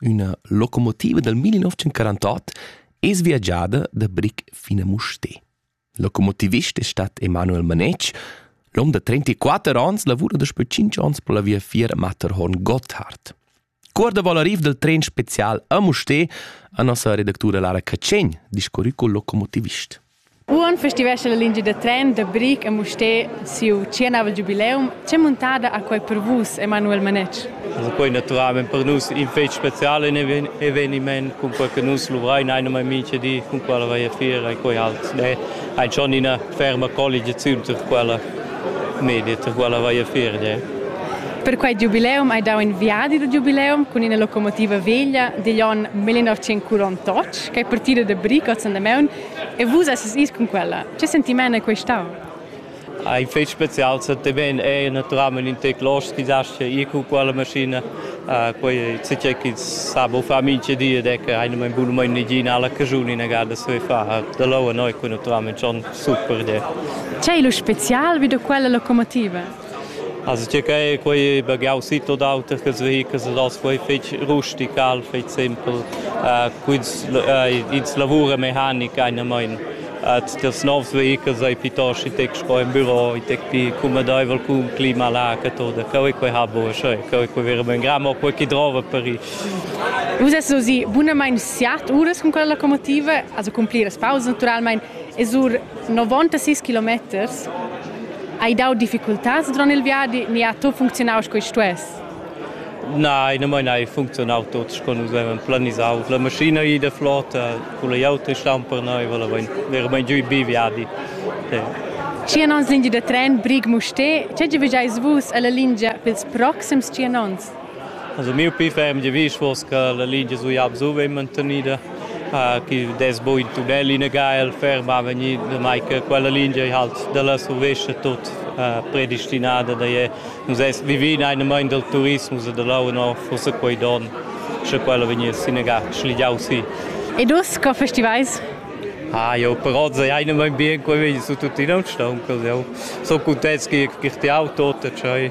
Üna locomotiva dal 1948 es viagiada da bric fin a Mustér. Locomotivist è stat Emanuel Manetsch. L'hom da 34 ans lavura daspö 5 ans per la viafier Matterhorn Gotthard. Cor da voler arriv dal tren special a Mustér a nossa redactura Lara Cacegn, discorri col locomotivist. Uon festivescha la lingia da tren da Bric a Mustér siu tschienau giubileum. Che muntada ha quei per vus, Emanuel Manetsch? Quei naturalmein per nus in fetg special in eveniment cun quei che nus luvrein ein mai mintga di cun quella veia fiera e quei halt ein schon ina ferma colligiaziun per quella media, per quella veia fiera. Per quei giubileum hai dau in viadi da giubileum cun ina locomotiva veglia digl onn 1948, ch'ei partida da Bric oz Andamaun E vus esses is cun quella. Che sentiment è questau? Ah, in fetg special se te ven è naturalmente in te clos chi dasce ir cu quella maschina uh, quei se c'è chi sa bo fa minche die de che eine mein buno mein nigina alla cajuni na garda se fa da lo a noi qui naturalmente son super de C'è lo special vi da quella locomotiva? As tgei quei baghiau sit od auter che vehicles ed as quei fetg rustical, fetg simpel. Quins ins lavura mechanica einamein. Tutt ils novs vehicles ei piuttost i tec sco in büro, i tec pli cumodeivel cun clima lag e tot. Cheu ei quei ha buca scheu, cheu ei quei veramein gra, mo quei che drova per ir. Vus esses ozi bunamain siat uras cun quella locomotiva, also cun pliras pausas naturalmein. E sur 96 kilometers hai dau difficultads durant il viadi ni ha tot funzionau sco stuess? Nein, na mai nein, funzionau tot sco nus avevan planisau. La maschina è da flota, con le auto stan per noi, volavan veramente giù bi viadi. Tschien onns lingia da tren Brig-Musté, tge vigiais vus alla lingia pels proxims tschien onns? Also miu pli ferm giavisch fuss che la lingia sui hab su vegn mantenida, chi dess buca in tunnel inegal ferma vegnir, damai che quella lingia ei halt dalla survescha tut predestinada, da je nus ess vivi in einer mein dal turismus e da leu no forse quei don, sche quella vegniss inegal schligiau si. E dus, co festivais? Ah jo, per oz è einer mein bien, quei vegn su tuttina un stauncal, jau so contents che che ti auto, tschei.